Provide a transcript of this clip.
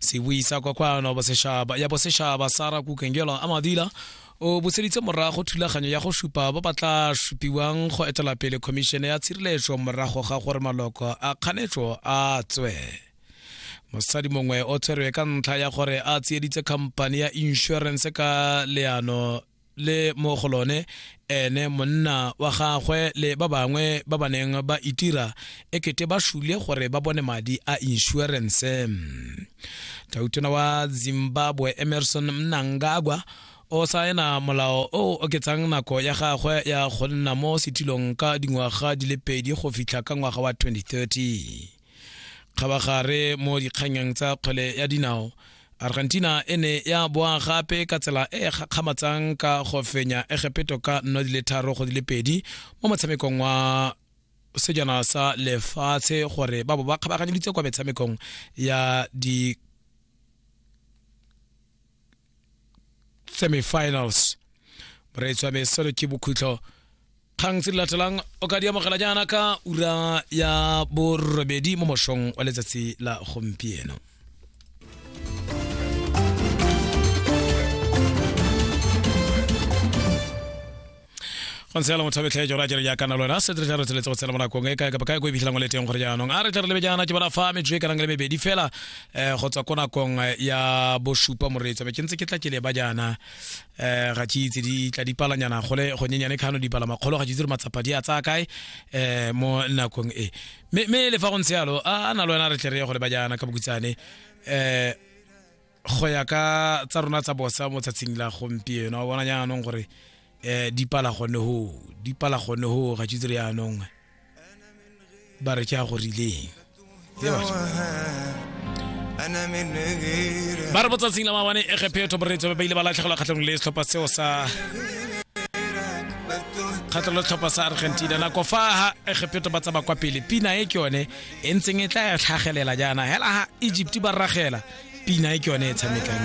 se buisa kwa kwano boseshaba ya boseshaba sara kukengelo a madila o buseditse morago thulaganyo ya go supa ba ba tla supiwang go etela pele khomišene ya tshireletso morago ga gore maloko a kganetso a tswe mosadi mongwe o tshwerwe ka ntlha ya gore a tsieditse khamphane ya insurance ka leano le mo go lone ene monna wa gagwe le ba bangwe ba ba neng ba itira e kete ba shule gore ba bone madi a insurance tautona wa zimbabwe emerson mnangagwa o saena molao o o oketsang nako ya gagwe ya go nna mo setilong ka dingwaga di le pedi go fitlha ka ngwaga wa 2030 kgabagare mo dikganyang tsa kgwele ya dinao argentina e ne ya boa gape ka tsela e e gakgamatsang ka go fenya egepeto ka nno di le tharo go di le pedi mo motshamekong wa sejana sa lefatshe gore ba bo ba kgabaganyeditse kwa metshamekong ya di semifinals moreetsi wa me selo ke bokhutlo kgang tse di latelang o ka di amogela jaana ka ura ya borobedi mo mošong wa letsatsi la gompieno go ntse fela motho betlhaetso ra jere jaaka na lwena se tle re tseletse go tshela mo nakong e kae kapa kae ko e fitlhelang o le teng gore jaanong a re tle re lebe jaana ke bona fa metsotso e kanang le mebedi fela um go tswa ko nakong ya bosupa moreetsa be ke ntse ke tla ke leba jaana um ga ke itse di tla dipalanyana gole gonyenyane kgano dipala makgolo ga ke itse re matsapa di a tsaya kae um mo nakong e mme le fa go ntse yalo a na lwena re tle re ye go leba jaana ka bokutsane um go ya ka tsa rona tsa bosa mo tsatshing la gompieno a bona jaanong gore um di pala gone ho di pala gone ho ga tshitse re yaanong ba re ke a go rileng ba re botsatsing la mawane e gephetho boretso ba ba ile ba latlhegelwa kgatlhanong le setlhopha seo sa kgatlhelo tlhopha sa argentina nako fa ha egepetho ba tsaba kwa pele pina e ke yone e ntseng e tla ya tlhagelela jaana hela ha egypt ba rragela pina e ke yone e tshamekang